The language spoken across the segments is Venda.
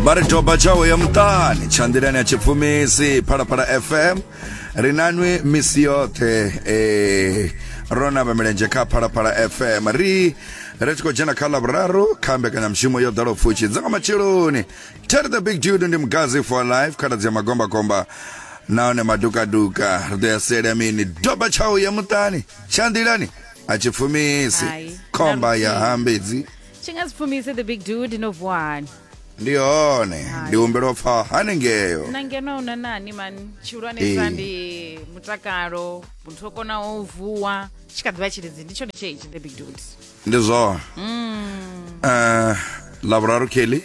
vha ri doba tshawe ya muṱani tshanḓilani ya tshipfumisi phalaphala fm ri nanwi misi yoṱhe eh, ro namba milenzhe kha phalaphala fm ri ri tshi khou dzhena kha lavhuraru kha mbekanyamushumo yo ḓala pfushi dza nga matsheloni terry the big dude ndi mugazi for life khaladzi ya magombakomba nahone madukaduka ri ḓo ya sela mini doba tshawe ya muṱani tshanḓilani a tshipfumisi Hai. khomba ya hambedzi chingazipfumise the big dude no vuwa hani ndi hone Hai. ndi humbela u pfa hanengeyo na ngeno una nani mani Eh. tshihulwanesa ndi mutakalo muthu o konaho u vuwa tshi kha ḓivha tshilidzi ndi tshone tsheichi the big dude ndi zwone Eh, lavhuraru kelly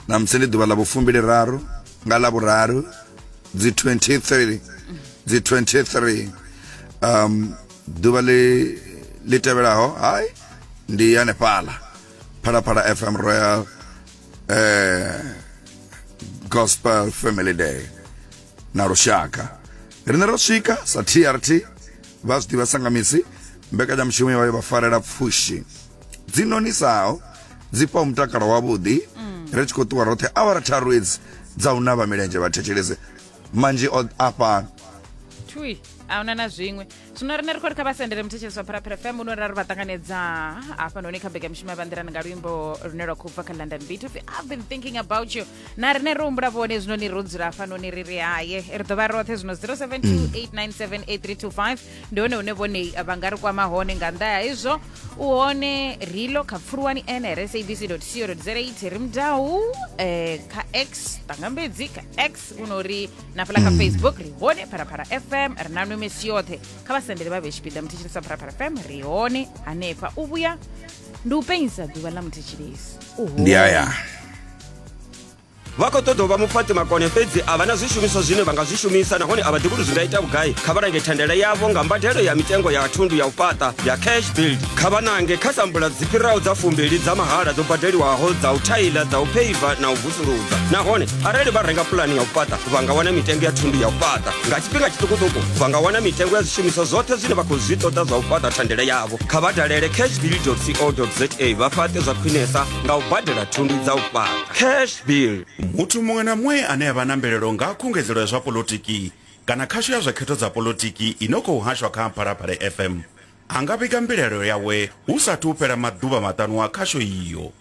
namusi ndi ḓuvha ḽa vhufumbili raru nga lavhuraru dzi 23 dzi 23 um ḓuvha ḽi ḽi tevhelaho hai ndi hanefhala phalaphala fm royal eh, gospel family day na lushaka rine ro swika sa trt vha zwi ḓivha sangamisi mbekanyamushumo yo vha farela pfushi dzi nonisaho dzi fha mutakalo wavhuḓi mm. ri tshi khou ṱuwa roṱhe awara tharu edzi dza u navha milenzhe vhathetshelese manzhi o a fhano thui a huna na zwiṅwe zwino riṋe ri khou ri kha vha sendele muthetshelesi wa pharapara fm uno ra ri vha ṱanganedza hafhanoni kha mbekanyamushumo ya vhanḓirani nga luimbo lune lwa khou bva kha london beat of i've been thinking about you na riṋe ro humbula vhone zwino ni ro dzula hafhanoni ri ri haye ri ḓo vha roṱhe zwino 0728978325 ndi hone hune vhone vha nga ri kwama hone nga nnḓa ya izwo u hone rilo kha pfuluwani nrsabc co za ri mudau um kha x tangambedzi kha x kuno uri na fhala kha mm. facebook ri hone pharapara fm ri na nwe misi yoṱhe kha vhasendele vha vhe tshipiḓa muthetshelesi wa pharapara fm ri hone hanefha u vhuya ndi u penyisa ḓuvha ḽa muthetshelesi ndi aya vha khou ṱoḓa u vha mupfati makone fhedzi a vha na zwishumiswa zwine vha nga zwi shumisa nahone a vha ḓivhi uri zwi nga ita vhugai kha vha lange thandela yavho nga mbadelo ya mitengo ya thundu ya u fhaṱa ya cash build kha vha nange kha sambula dzi fhiraho dza fumbili dza mahala dzo badeliwaho dza u thaila dza u pheiva na u suluza nahone arali vha renga pulani ya u fhaṱa vha nga wana mitengo ya thundu ya u fhaṱa nga tshifhinga tshiṱukuṱuku vha nga wana mitengo ya zwishumiswa zwoṱhe zwine vha khou zwi ṱoḓa zwa u fhaṱa thandela yavho kha vha dalele cashbill co za vha fhaṱe zwa khwinesa nga u badela thundu dza u fhaṱa cashbill muthu muṅwe na muṅwe ane a vha na mvelelo nga khungedzelo ya zwa polotiki kana khasho ya zwa khetho dza polotiki i no khou hashwa kha phalaphala fm a nga vhiga mbilaelo yawe hu sathu fhela maḓuvha maṱanu a khasho iyo